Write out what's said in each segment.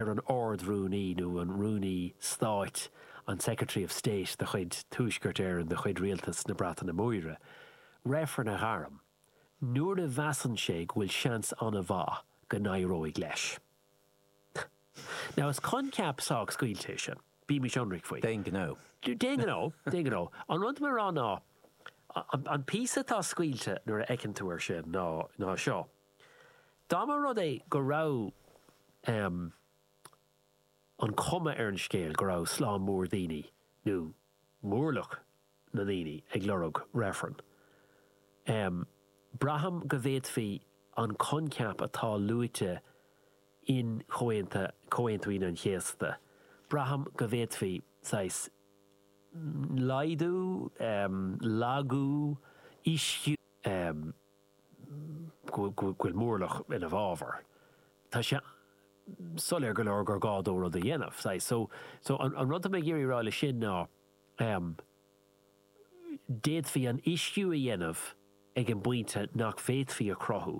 ar an Ard-Rúnaí nó an Rúnaí Stáit an Secretary of State de chuid Tuaisceart Éireann de chuid Rialtas na Breataine Móire reifreann a ghairm nuair a mheasann sé go bhfuil seans an-mhaith go n-éireoidh leis? Now, is coincheap sách scaoilte é sin, bímis ionraic faoi. D'aon ghnó. D'aon ghnó, d'aon ghnó. An rud atá le rá ná, an píosa atá scaoilte nuair a fheiceann tú air sin ná seo. Dá mba rud é go raibh an chuma ar an scéal go raibh slám mór daoine, nó mórlach na ndaoine, ag lorg reifreann, braithim go bhféadfaí an coincheap atá luaite in Comhaontú Aoine an Chéasta, braithim go bhféadfaí saghas laghdú, lagú, ísliú. go bhfuil mórlach ina bhfabhar. Tá sé soiléir go leor gur gá dó rud a dhéanamh, saghas. So, so, an, an rud atá mé ag iarraidh a rá leis sin ná, em, d'fhéadfaí an uisciú a dhéanamh ag an bpointe nach bhféadfaí a chruthú.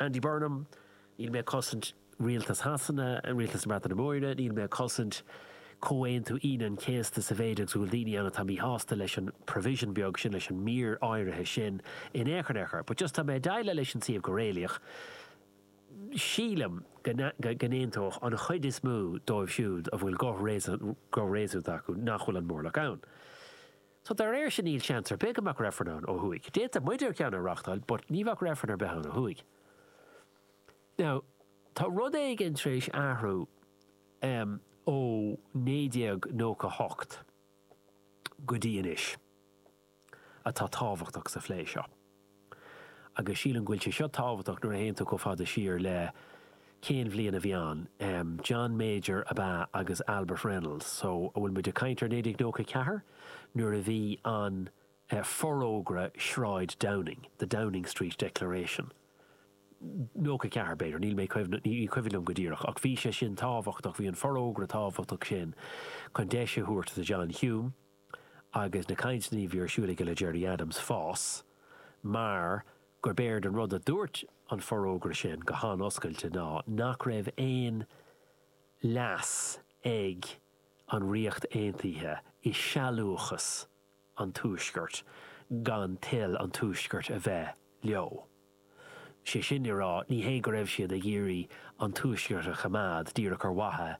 Andy Burnham, Níl mé ag cosaint Rialtas Shasana, Rialtas na Breataine Móire, níl mé ag cosaint Comhaontú Aoine an Chéasta sa mhéid agus go bhfuil daoine ann atá míshásta leis an provision beag sin, leis an mír áirithe sin in aon chor, in aon chor. But just tá mé ag déileáil leis an suíomh go réalaíoch. Sílim go n-aontódh an chuid is mó dóibh siúd a bhfuil guth réasúnta acu nach bhfuil an mórlach ann. Tá, dá réir sin níl seans ar bith go mbeadh reifreann ann ó thuaidh. D'fhéadfadh muide ceann a reáchtáil but ní bheadh reifreann ar bith ann ó thuaidh. Now, tá rud éigin tar éis athrú em ó 1998 go dtí anois atá tábhachtach sa phlé seo. agus sílim go bhfuil sé seo tábhachtach nuair a théann tú chomh fada siar le cén bhliain a bhí ann? John Major ab ea agus Albert Reynolds so an bhfuil muid ag caint ar 1994 nuair a bhí an Forógra Shráid Downing, The Downing Street Declaration? 94 b'fhéidir, níl mé, ní cuimhin liom go díreach ach bhí sé sin tábhachtach, bhí an forógra tábhachtach sin chun deis a thabhairt do John Hume, agus na cainteanna a bhí ar siúl aige le Gerry Adams fás mar gurb éard an rud a dúirt an forógra sin go han-oscailte ná nach raibh aon leas ag an Ríocht Aontaithe i sealbhúchas an Tuaiscirt gan toil an Tuaiscirt a bheith leo. Is é sin le rá, ní hé go raibh siad ag iarraidh an Tuaisceart a choimeád díreach ar mhaithe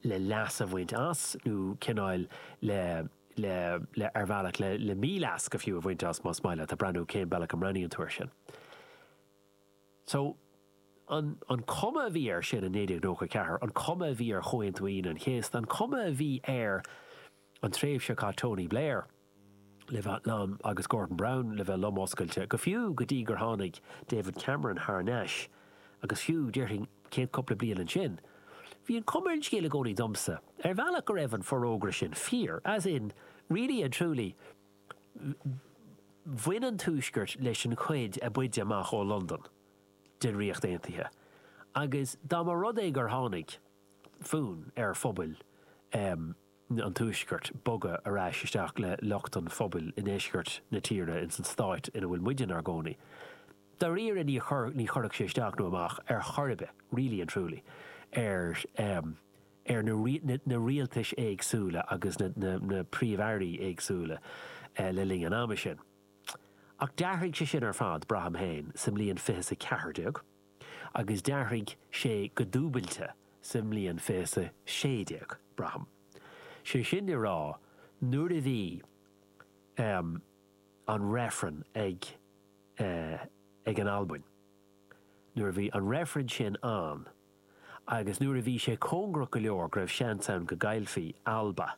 le leas a bhaint as nó cineál le, le, le, ar bhealach, le, le mí-leas go fiú a bhaint as, más maith leat, ag breathnú cén bealach a mbreathnaíonn tú air sin. So, an, an chuma a bhí air sin in 1994, an chuma a bhí ar Chomhaontú Aoine an Chéasta, an chuma a bhí ar an tréimhse a chaith Tony Blair, le bheith liom agus Gordon Brown le bheith lom oscailte, go fiú go dtí gur tháinig David Cameron thar nais agus fiú, déarfainn, chéad chúpla bliain ansin. Bhí an cuma ar an scéal i gcónaí domsa, ar bhealach, go raibh an forógra sin fíor, as in, really and truly, bhain an tuaisceart leis an chuid a b'fhaide amach ó Londain den Ríocht Aontaithe agus dá mba rud é gur tháinig fonn ar phobal, eh, an tuaiscirt bogadh ar ais isteach le lucht an phobail i ndeisceart na tíre ins an stát ina bhfuil muide 'nár gcónaí. Dáiríre ní ní chuirfeadh sé isteach nó amach ar chor ar bith, really and truly, ar eh ar na na na rialtais éagsúla agus na na na príomh-airí éagsúla eh le linn an ama sin. Ach d'athraigh sé sin ar fad, braithim féin, sa mbliain fiche is a ceathair déag. agus d'athraigh sé go dúbailte sa mbliain fiche is a 16, braithim. Sé sin le rá, nuair a bhí, em, an reifreann ag, eh, ag an Albain, nuair a bhí an reifreann sin ann agus nuair a bhí sé cóngarach go leor go raibh seans ann go gcaillfí Alba,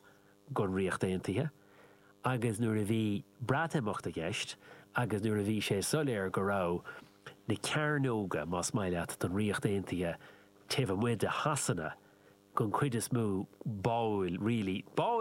don Ríocht Aontaithe agus nuair a bhí Breatimeacht i gceist agus nuair a bhí sé soiléir go raibh na cearnóga, más maith leat, don Ríocht Aontaithe taobh amuigh de Shasana den chuid is mó, báúil, really, báúil!